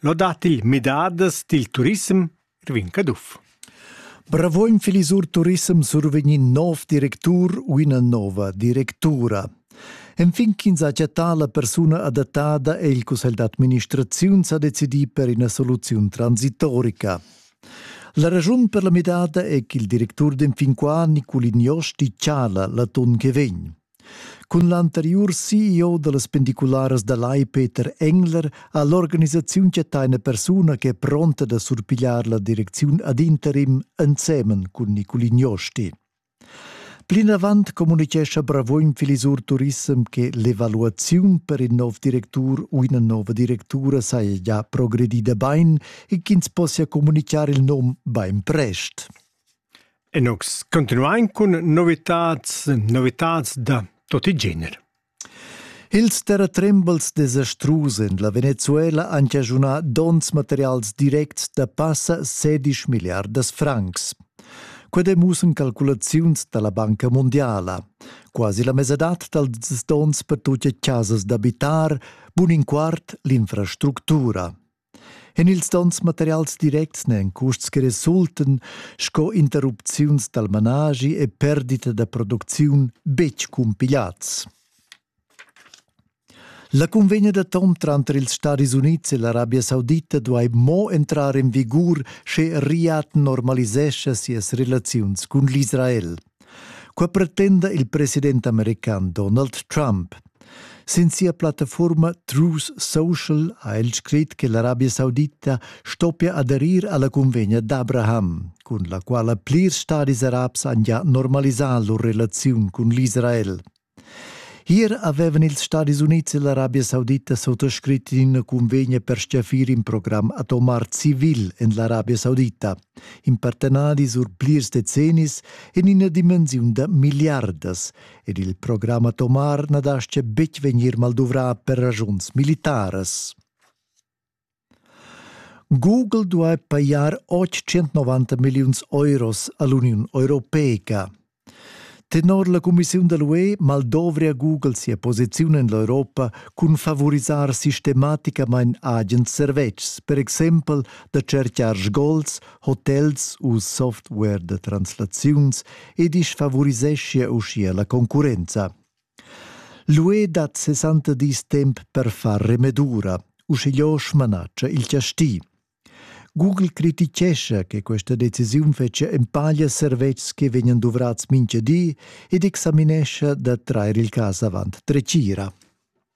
Lodat il midadas dil turissem Irvin Caduff. Bravo in filisur turissem survegnin nov directur u ina nova directura. Enfin ch'ins ha chattà la persuna adattada è il cussegl d'administraziun sa decidì per ina soluziun transitorica. La raschun per la midada è ch'il directur d'enfin qua Niculin Josti chala l'atun che vegn. Cun l'anteriur CEO dallas pendicularas da Lai Peter Engler ha l'organisaziun chatteina persuna ch'è pronta da surpigliar la direcziun ad interim ensemen cun Niculin Josti. Plinavant communitgescha Bravogn Filisur Turissem che l'evaluaziun per in nov directur u ina nova directura saja già progredida bein e ch'ins possia communicar il num bein prest. E nus continuain cun novitads, novitads da tot il gener. Ils terratrembels desastrus en la Venezuela han chaschunà donns materials directs da passa 16 milliardas francs. Quai demussan calculaziuns da la Banca Mondiala. Quasi la mesadad dals donns per tut casas d'abitar, bun in quart l'infrastructura. En ils donns materials directs n'èn custs che resultan sco interrupziuns dal managi e perdita da producziun betg cumpigliads. La cunvegna d'atom tranter ils Stadis Unids e l'Arabia Saudita duai mo entrar en vigur, sche Riad normalisescha sias relaziuns cun l'Israel. Qua pretenda il president american Donald Trump. Sin sia plattaforma Truth Social ha el scrit che l'Arabia Saudita stoppia aderir alla convegna d'Abraham, cun la quala plirs stadis arabs han già normalisà lur relaziun cun l'Israel. Ier avevan ils Stadis Unids e l'Arabia Saudita sottoscrit ina convegna per stgaffir in program atomar civil en l'Arabia Saudita, in partenadi sur plirs decennis en ina dimensiun da miliardas, ed il program atomar na dastga betg vegnir malduvrà per ragiuns militaras. Google duai pajar 890 milliuns euros a l'Uniun europeica. Tenor la cumissiun da l'UE maldovria Google sia posiziun en l'Europa cun favorisar sistematicamain agens servetschs, per exempel da tschertgar sgols, hotels u software da translaziuns e disfavuriseschia uschia la concurrenza. L'UE dat 60 dis temp per far remedura, uschigliö smanatscha il chasti. Google critichescha che questa decisiun fetschia empaglia servetschs che vegnan duvrats mincha di ed examinescha da trair il cas avant dretgira.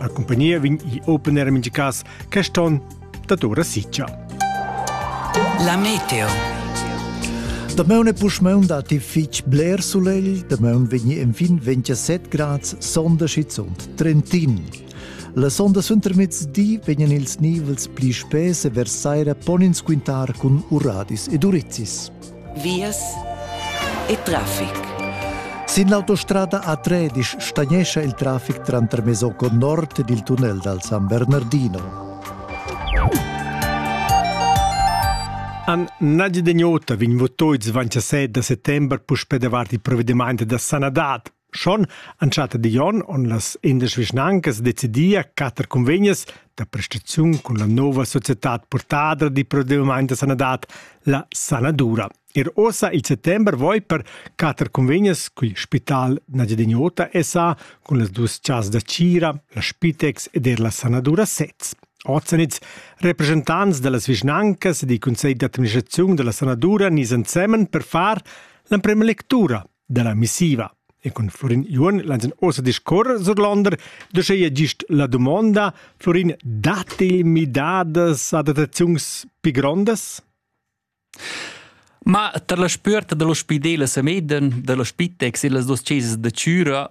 La compagnia vegn open era mintga cas quest onn dad ora sitga. La meteo. Damaun e puschmaun datti fitg bler sulegl, damaun vegni enfin 27 grads sonda schizunt Trentin. La sonda suentermezdi vegnan ils nivels pli spess e vers saira pon ins quintar cun uradis ed urizis. vias e traffic. Sin l'autostrada A13 stagnescha il traffic tranter Mesocco nord ed il tunnel dal San Bernardino. An Nadi Degnota vegn votoids 27 da settember puspè davart il provvediment da sanadad. Schon entschatta Dion on las indesch vischnancas decidia quatter convegnas da prestaziun cun la nova societad portadra di provvedimento da sanadad, la Sanadura. Ir ossa il settember voi per quatter convegnas cul Spital Nagyadignota SA cun las dus chas da Cira, la Spitex ed er la Sanadura sez. Ozenitz, representants dallas vischnancas e di conselli d'administrazione della Sanadura nis ensemen per far l'emprema lectura dalla missiva. E cun Florin Juon lainsen ossa discorrer surlander, da schei gist la domanda, Florin, datti midadas adattaziuns più grondas? Ma tar la spüerta dello spidel a Semeden, dello Spitex e las dos chesas da Cüra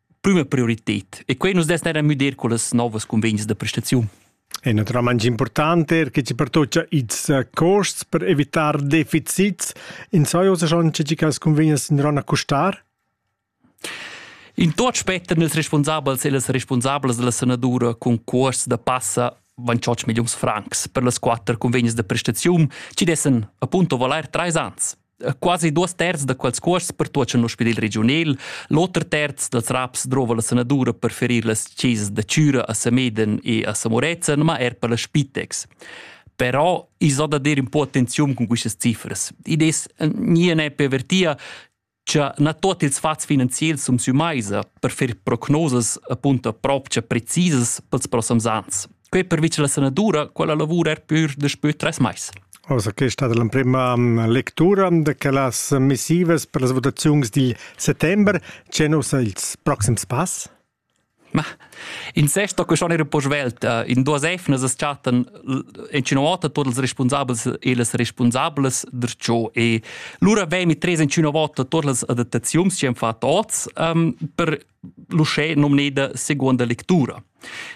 prima prioritet e quei nus dess era müder con las novas convegns da prestaziun. E naturalmente importante er che ci pertoccia ils eh, costs per evitare deficits. In soiosa schon che cas convegnas in rona costar? In tot spetten ils responsabels e les responsabels della senatura con cuors da passa van 8 millions francs per las quatter convegnes de prestaziun, ci dessen appunto valer 3 ans. quasi duas terz da quels cuosts pertuocha in ospidel regiunal, l'oter terz dals raps drova la sanadura per ferir las chesas da Cüra a Sameden e a Samorezen, ma er per la Spitex. Però i so da dir un po attenziun con queste cifras. Id es nie ne pervertia che na tuot ils fats finanziels sum sü maisa per fer prognosas appunto propcha precisas pels prossems ans. Quei pervi che la sanadura, quella lavura er pur daspö tres mais. Also, che è stata l'emprima mm, lectura de las missivas per las votazioni di settembre. C'è il prossimo pass? Ma in sesto che schon era po svelt uh, in duas efnas es chatten in cinavota tots els responsabels e les responsables der ciò e lura vei mi tres in cinavota tots les adattaziuns che han fatto oz um, per l'uscè nomneda seconda lectura.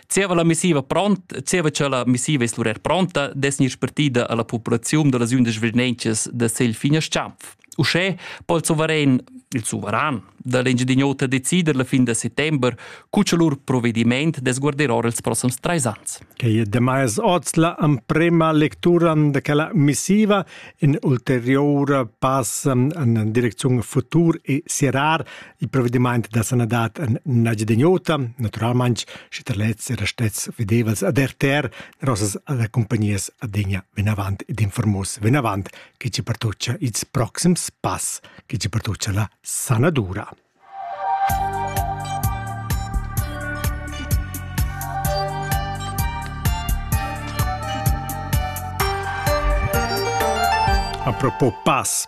Zieva la missiva pront, zieva cha la missiva es lura pronta, dess gnir spartida a la populaziun da las undisch vernentschas da segl fin a Schampf. Uschè po il suverain, il suveran da l'Engiadin'Ota decider la fin da settember cu cha lur provedimaint dess guarder ora ils prossams trais ans. Quai è demais oz la emprema lectura de quella missiva in ulterior pass en direcziun futur e serrar il provvediment da sanadad en nagid ota, naturalmente, sche der letzte oder stets vedevals ad RTR, rosas alle compagnies adegna ben avant ed informus ben avant che ci pertuccia its proxims pass, che ci pertuccia la sanadura. A propos pass,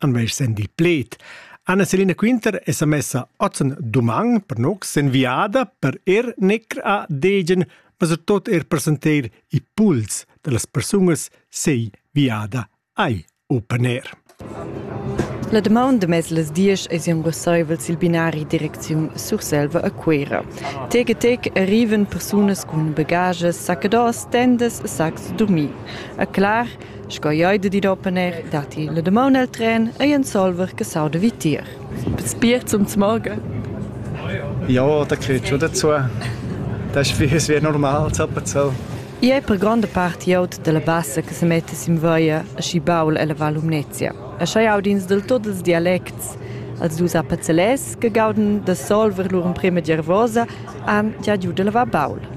an vei sendi pled. Anna Selina Quinter è sa messa ozen duman per noc sen viada per er necr a degen, ma ser tot er presenteir i puls de las persungas sei viada ai opener. La demanda mez las dies es un resaivels il binari direcziun Surselva a Cuera. Teg e teg arriven persunas cun bagages, sacchedos, tendes, sacs, dormir. A clar, Sco ei de dir oppener, datti la damon el tren ei ensolver che sauda vitier. Spiert zum Morgen. Ja, da kriegst schon dazu. Das ist wie normal, so. I è per gronda parte iot della bassa che se mette sim voia a sci baul ella Val Umnezia. E schai audins del tot els dialects. Als dus apazzelès che gauden da solver lur emprema gervosa han già giù de lavar baul.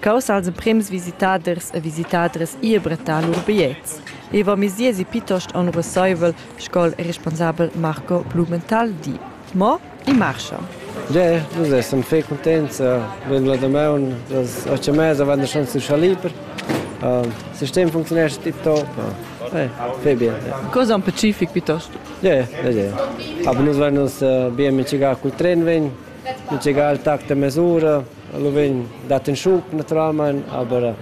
Caus als emprems visitaders e visitadras ir brettar lur bigliets. Ei va mesiezi pietost onuresseivel, sco il responsabel Marco Blumenthal di. Mo i marscha. Ja, nus essan fei contents. Vegn la damaun das otg e mezza van der schon zu Schaliber. Uh, das System funktioniert tiptop. Uh, eh, fei bien. Ja. Cosa un pacific piuttosto? Ja, ja, ja. Aber nus werden uns uh, bien mit chegar col tren vegn, mit chegar al tact de mesura. Lo vegn dat in schub naturalmein, aber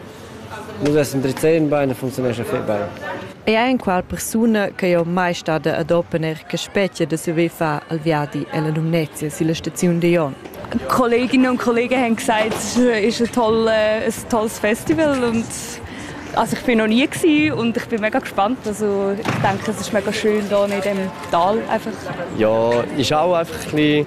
nus essen drizzegn bein e funzionescha fei bein. Ei ei enqual persuna che jeu mai stada ad opener che spetga da saver far il viadi ella Lumnezia silla staziun Dion. Kolleginnen und Kollegen haben gesagt, es ist ein, toll, ein tolles Festival und also ich bin noch nie gewesen und ich bin mega gespannt. Also ich denke, es ist mega schön hier in diesem Tal einfach. Ja, ist auch einfach ein bisschen